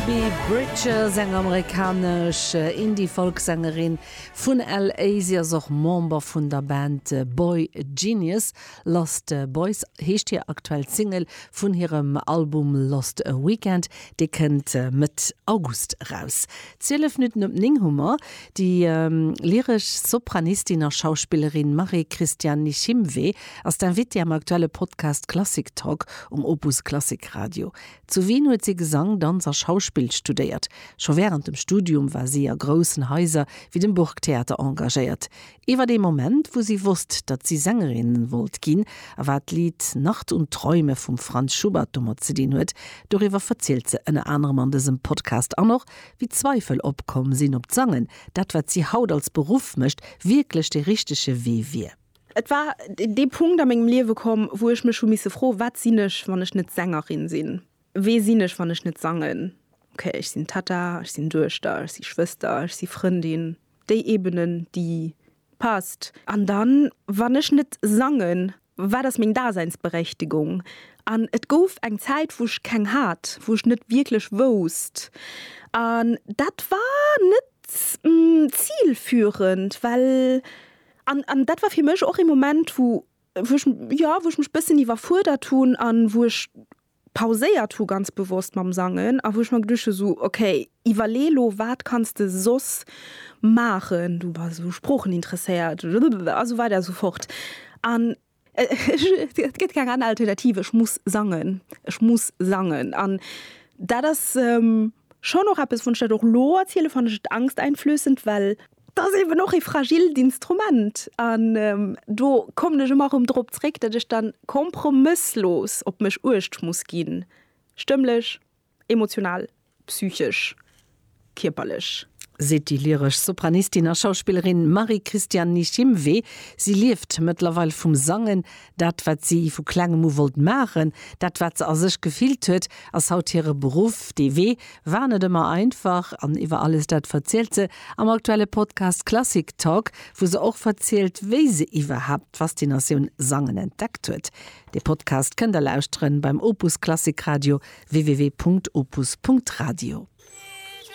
D'Phoebe Bridgers, eng amerikanesch Indie-Folksängerin vun LA. Si ass och Member vun der Band boygenius. Lost Boys heescht hir aktuell Single vun hirem Album Lost Weekend. Dee kënnt Mëtt August eraus. 12 Minutten op 9 hu mer déi lyresch Sopranistin a Schauspillerin Marie-Christiane Nishimwe ass d'Invitée am aktuelle Podcast Klassik Talk um Opus Klassik Radio. Zu Wien huet si Gesang, Danz a Schauspill studéiert. Scho wärend dem Studium war si a groussen Haiser wéi dem Burgtheater engagéiert. Iwwer ee Moment, wou si wosst, datt si Sängerin wollt ginn a wat d'Lidd Nacht und Träume vum Franz Schubert domat ze dinn huet, doriwwer verzielt se ënner anerem an dësem Podcast. An och, wéi Zweifel opkomm sinn, ob d'Sangen, dat wat si haut als Beruff mécht, wierklech dee richtege Wee wier. Et war dee Punkt a mengem Liewe komm, wou ech mech hu misse froen, Wat sinn ech, wann ech net Sängerin sinn? Wee sinn ech, wann ech net sangen? Ok, ech sinn Tatta, ech sinn Duechter, ech si Schwëster, ech si Frëndin, déi Ebene, déi passt. An dann, wann ech net sangen, wat ass meng Daseinsberechtigung? An et gouf eng Zäit, wou ech keng hat, wou ech net wierklech wousst. An dat war net zilführend, well An, an dat war fir mech och ee Moment, wou, wou ech, jo, wou ech mech e bëssen iwwerfuerdert hunn a wou ech pauséiert hu ganz bewosst mam Sangen a wou ech mer geduecht hu sou, okay, iwwerlee lo, wat kanns de soss maachen, du bass u Sproochen interesséiert a sou weider a sou fort. An Et gëtt keng aner Alternativ, ech muss sangen, ech muss sangen. An dat ass schonn och eppes, wann ech dat och elo erzielen, fannen ech et angsteinflößend, well et ass eeben och e fragilt Instrument. An do kommen ech ëmmer erëm drop zréck, datt ech da kompromësslos op mech uecht muss ginn, stëmmlech, Emotional, psychesch, kierperlech. Seet déi lyresch Sopranistin a Schauspillerin Marie-Christiane Nishimwe. Si lieft mëttlerweil vum Sangen. Dat, wat si vu klengem u wollt maachen, dat, wat se a sech gefillt huet, ass haut hire Beruff. Dee Wee war net ëmmer einfach. An iwwer alles dat verzielt se am aktuelle Podcast Klassik Talk, wou se och verzielt, wéi se iwwerhaapt d'Faszinatioun Sangen entdeckt huet. De Podcast kënnt der lauschteren beim Opus Klassik Radio www.opus.radio.